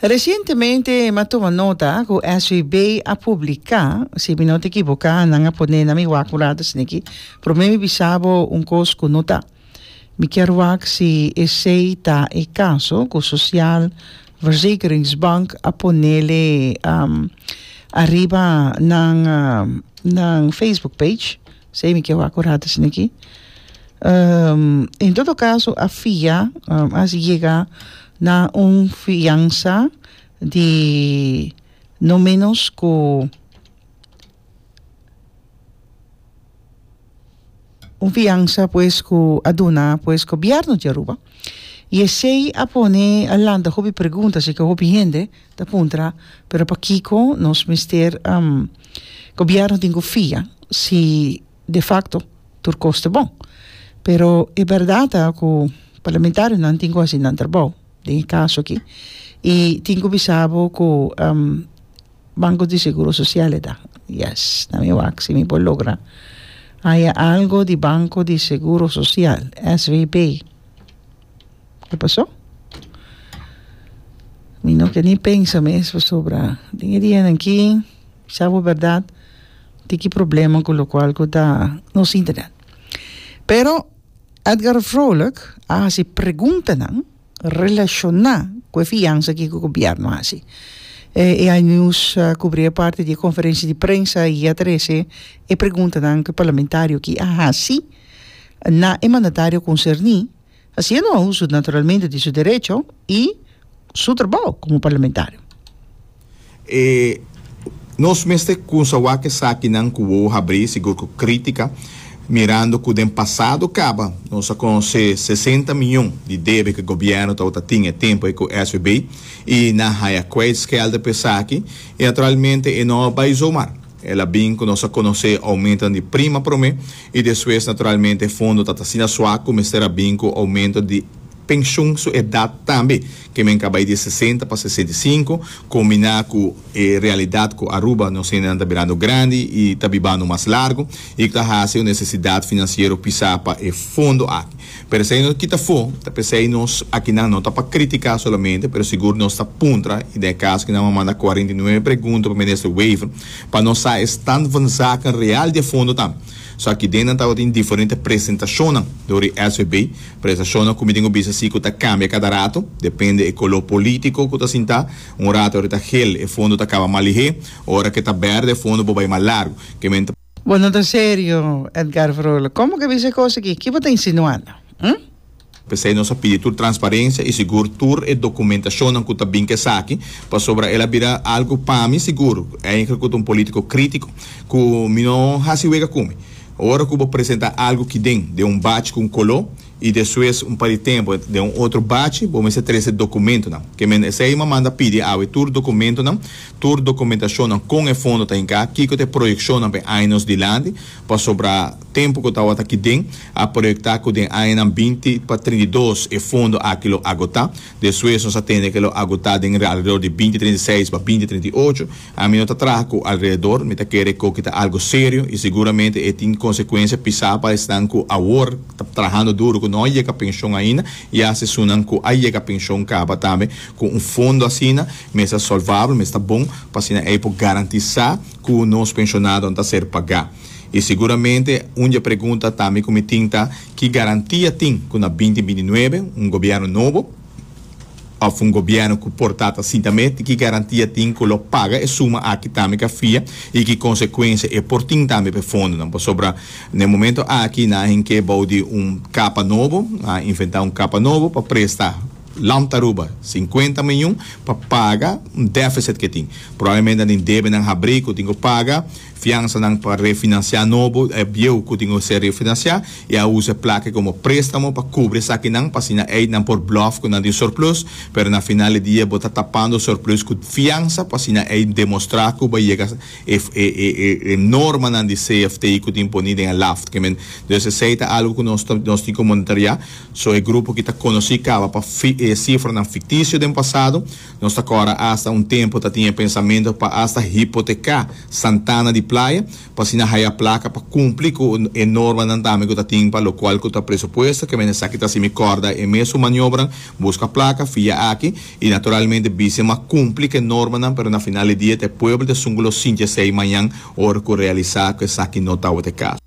Resientemente mi a tuma nota cu SVB a publica, si mi no ta equivoca, nan a pone na mi wak un rato esneki. Prome mi bisa bo un cos cu no ta. Mi kier wak si esey ta e caso cu Sociaal Verzekeringsbank a ponele ariba nan Facebook page. Sey mi ke wak orate sini aki. en todo caso a fia um, a si yega na un fiansa di no menos ku un fiansa pues ku a duna pues gobierno di Aruba y esey a pone a lanta hopi pregunta así ke hopi hende Ta puntra, Pero pakiko nos mester Gobierno tin ku fia si de fakto tur kos ta bon? Pero e bèrdat ta ku parlamentarionan tin ku hasi nan trabou den e kaso aki i tin ku bisa bo ku Banko di Seguro Sosial eta yes na mi wak si mi por logra haya algo di Banko di Seguro Sosial, SVB. Ke pasó? Mi no ke ni pensa mes pasobra den e dianan aki sa bo bèrdat tiki problema ku lokual ku ta nos internet pero Edgar Vrolijk a hasi preguntanan relashoná ku e fiansa aki ku gobièrnu a hasi e ai news a kubrí e parti di e konferensia di prensa i a trese e preguntanan ku e parlamentario aki a hasi na e mandatario konserní. Hasiendo uso naturalmente di su derecho y su trabao como parlamentario. E Nos mester cunsa wak esakinan cu wou habri, sigur cu critica, mirando cu den pasado caba nos a conoce sesenta miyon di debe cu gobierno tabata tin e tempo ei cu SVB y nan haya kwijtschelden pa esaki y naturalmente e no a bai zomar. El a bin cu nos a conoce aumento di prima prome y despues naturalmente e fondo ta asina suak cu mester a bin cu aumento di pensioen su edad tambe, ke men caba e di sesenta pa sesenta y sinku, combina cu e realidad cu Aruba nos hendenan ta birando grandi y ta bibando mas largo y cu ta haci un necesidad financiero pisa pa e fondo aki. Pero esei nos kita fo, ta p'esei nos akinan no ta pa kritiká solamente, pero sigur nos ta puntra, i den e kaso aki nan bo manda kuarenta i nuebe pregunta pa Minister Wever pa nos sa e stand van zaken real di e fondo ta. So aki den nan tabatin diferente presentashonnan dor di SVB, presentashonnan ku mi tin ku bisa si ku ta kambia kada rato, depende e koló polítiko ku ta sintá, un rato ora ta hel e fondo ta kaba malihé, ora ke ta bèrdè e fondo bo bai mas largu. Ke men ta. Bo no ta serio, Edgar Vrolijk. Como ke bisa e cos aki? Ki bo ta insinuando? Hm? P'esei nos a pidi tur transparencia y sigur tur e documentacionnan cu ta bin cu esaki, pasobra el a bira algo pa mi sigur, eigenlijk cu ta un politico critico, cu mi no haci wega cu mi. Ora cu bo presenta algo ki den den un bach cu un colo, y despues un par di tempo den un otro bachi bo mester trece documentonan que men esey a manda pidi awe tur documentonan tur documentacionnan con e fondo ta hinca kico ta e proyeccionnan pa e años dilanti pasobra tempo cu tawata aki den a proyecta cu den añanan binti pa trinta y dos e fondo aki lo agota despues nos a tende que lo agota den alredor di binti trinta y seis pa binti trinta y ocho Ami no ta traha ku alrededor, mi ta kere koki ta algu serio i seguramente e tin konsekuensia pisá pa esnan ku awor ta trahando duru ku no a yega penshon ainda i ase esunnan ku a yega penshon kaba tambe. Ku un fondo asina mester sòlvabel, mester bon pa asina ei por garantisá ku nos penshonadonan ta ser pagá. I seguramente un di e pregunta tambe ku mi tin ta, ki garantia tin ku na binti binti nuebe, un gobièrnu nobo, Òf un gobièrnu ku por ta ta sinta mé, ti ki garantia tin ku lo paga e suma aki tambe ka fria i ki konsekuensia e por tin tambe pa e fondonan? Pasobra na e momentu aki nan a hink'é bou di un kapa nobo, nan a inventá un kapa nobo pa presta lamp ta Aruba sinkuenta miun pa paga un dèfisit ke tin. Probablemente nan tin debenan habrí ku tin ku paga Fiansanan pa refinansiá nobo e bieu ku tin ku ser refinansiá i a usa e plake komo préstamo pa kubri esakinan pa asina ei nan por blòf ku nan tin surplus, pero na final di dia bo ta tapando surplus ku fiansa pa asina ei demostrá ku bo a yega e normanan di CFT ku tin poní den e laft. Entonces esei ta algu ku nos ta nos tin ku monitoreá. So e grupo ki ta konosí kaba pa sifranan fiktisio den pasado. Nos ta kòrda asta un tempu ta tin e pensamentu pa asta hipoteká Santana di Playa pa asina haya plaka pa kumpli ku e normanan tambe ku ta tin pa lokual ku ta presupuesto kemen esaki ta así mi kòrda e mes su maniobran buska plaka fia aki i naturalmente Bísima kumpli ku e normanan pero na final di dia ta e pueblo ta sungu lo sinti esei mañan ora ku realisá ku esaki no tabatin kaso.